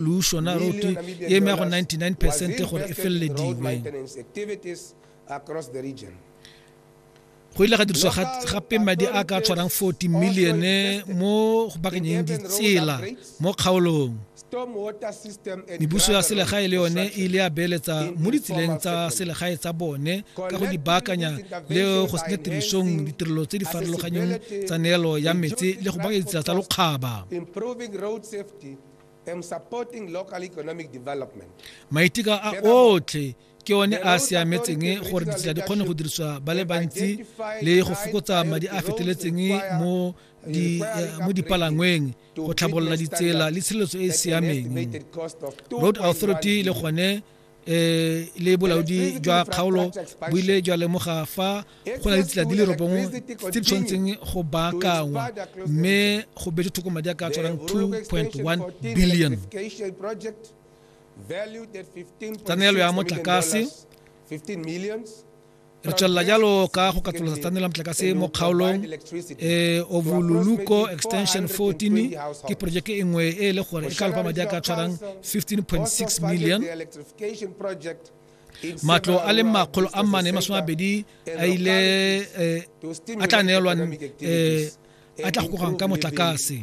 lušo na roto ye e meago 99 percent gore e felelediwe go ile ga diriswa gape madi a ka tshwarang 40 million mo go bakanyeng ditsela mo kgaolong mebuso ya selegae le yone e ile ya beeletsa mo ditseleng tsa selegae tsa bone ka go di baakanya le go senya tirisong ditirelo tse di farologanyeng tsa neelo ya metsi le go bakanya ditsela tsa lokgaba maitika a otlhe ke one a a siametseng gore ditsela di kgone go dirisiwa ba le bantsi le go fokotsa madi a feteletseng mo Eh, mo dipalangweng go tlhabolola ditsela le tshireletso e e siameng road authority le gone eh le bolaodi jwa kgaolo bo ile jwa lemoga fa go na le tsela di le robongwe tse di tshwanetseng go baakangwa mme go betse thoko madi a ka tshwarang 2.1 billion tsa neelo ya motlakase 15 millions re tswelela jalo ka go katolosa tsa nela motlakase mo kgaolong e ovoluluko extension 14 ke projeke e nngwe e e le gore e ka lopa madi a ka tshwarang 15.6 million matlo a le makgolo a mane masome abedi a ile eh, a tla neelwang eh, a tla go gogang ka motlakase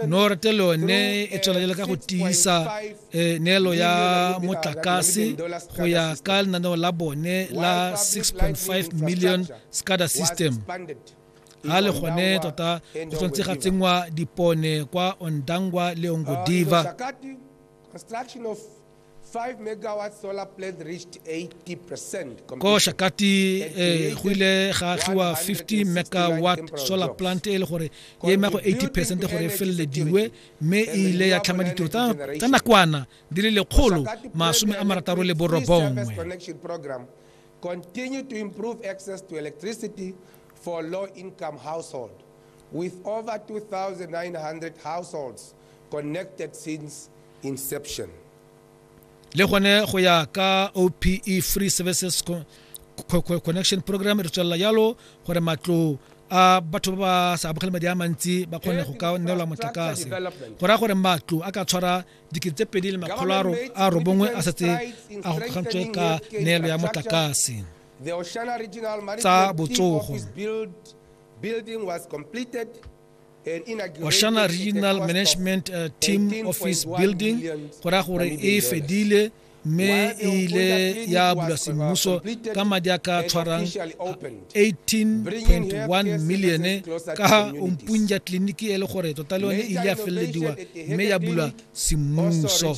norte le one e tswelela ka go tiisa eh, neelo ya motlakase go ya ka lenaneo la bone la 6.5 million scada system ga le gone tota go tshwanetse ga tsenngwa dipone kwa ondangwa le ongodiva uh, ko shakati eh, go ile ga tliwa 50 megawatt solar plant e le gore e ema go 80 percent gore e felelediwe mme e ile ya tlhama ditiro tsa nakwana di le lekgolo masome a marataro le borobongwe continue to improve access to electricity for low-income households, with over 2,900 households le gone go ya ka ope free services connection program re tswelela yalo gore matlo a batho ba ba sa amogele madi a mantsi ba kgone go ka neelwa motlakase go raya gore matlo a ka tshwara dikete tse pedi le makgolo a robongwe a setse a gogantswe ka neelo ya motlakase tsa botsogo building was completed oshana regional management uh, team office building go raya gore e fedile mme e ile ya bulwa semmuso ka madi a ka tshwarang 18.1 milione ka ompunja tleliniki e le gore tota le yone e ile ya felelediwa mme ya bulwa semmuso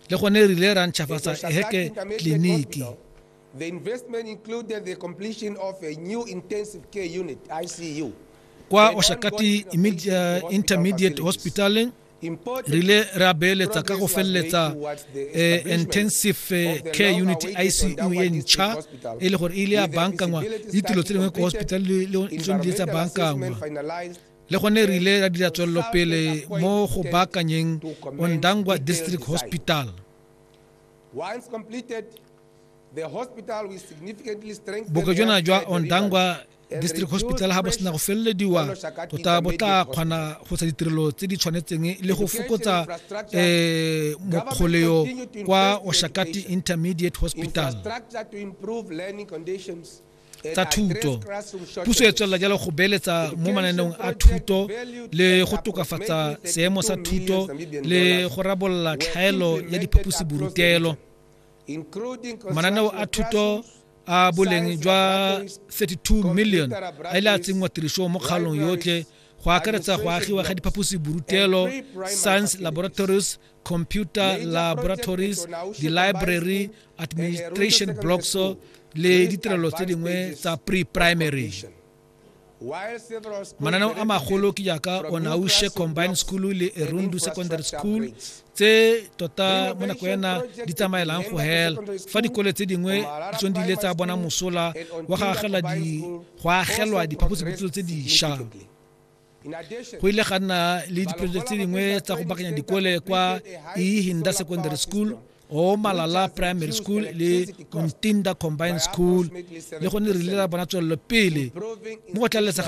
le gone e rile ra ntšhafatsa eheke tleliniki The investment included the completion of a new intensive care unit, ICU. kwa oshakati immedi- uh, intermediate hospital re le re a beeletsa ka go feleletsa eh, intensive eh, care unit icu e ntšha e le gore e ile ya bankangwa le ditiro tse dingwe ko hospital le- le- le tsone di ile tsa bankangwa le gone re ile ra dira tswelelopele mo go baakanyeng ondangwa district hospital Once completed, bokajona jwa ondangwa district hospital ga bo sena go felelediwa tota bo tla kgona go tsa ditirelo tse di tshwanetseng le go fokotsa um mokgoleo kwa oshakati intermediate hospital tsa thuto puso e tswelela jalo go beeletsa mo mananeong a thuto le go tokafatsa seemo sa thuto le go rabolola tlhaelo ya diphaposiborutelo mananeo a thuto a boleng jwa 32 million a ile a tsenngwa tirisong mo kgalong yotlhe go akaretsa go agiwa ga diphaposi borutelo science laboratories computer laboratories the library administration blocks le ditirelo tse dingwe tsa pre-primary mananeo a magolo ke jaaka onaushe combined school le erundu secondary school tse tota mo nako ena di tsamaelang go hela fa dikole tse dingwe di tsong di ile tsa bona mosola wa go agelwa diphaposiputselo tse dišwa go ile ga nna le dipelo tse dingwe tsa go bakanya dikole kwa ehinda secondary school o malala primary school le ntinda combined school le gone re ile ra bona tswelelo pele mo go tlalelesa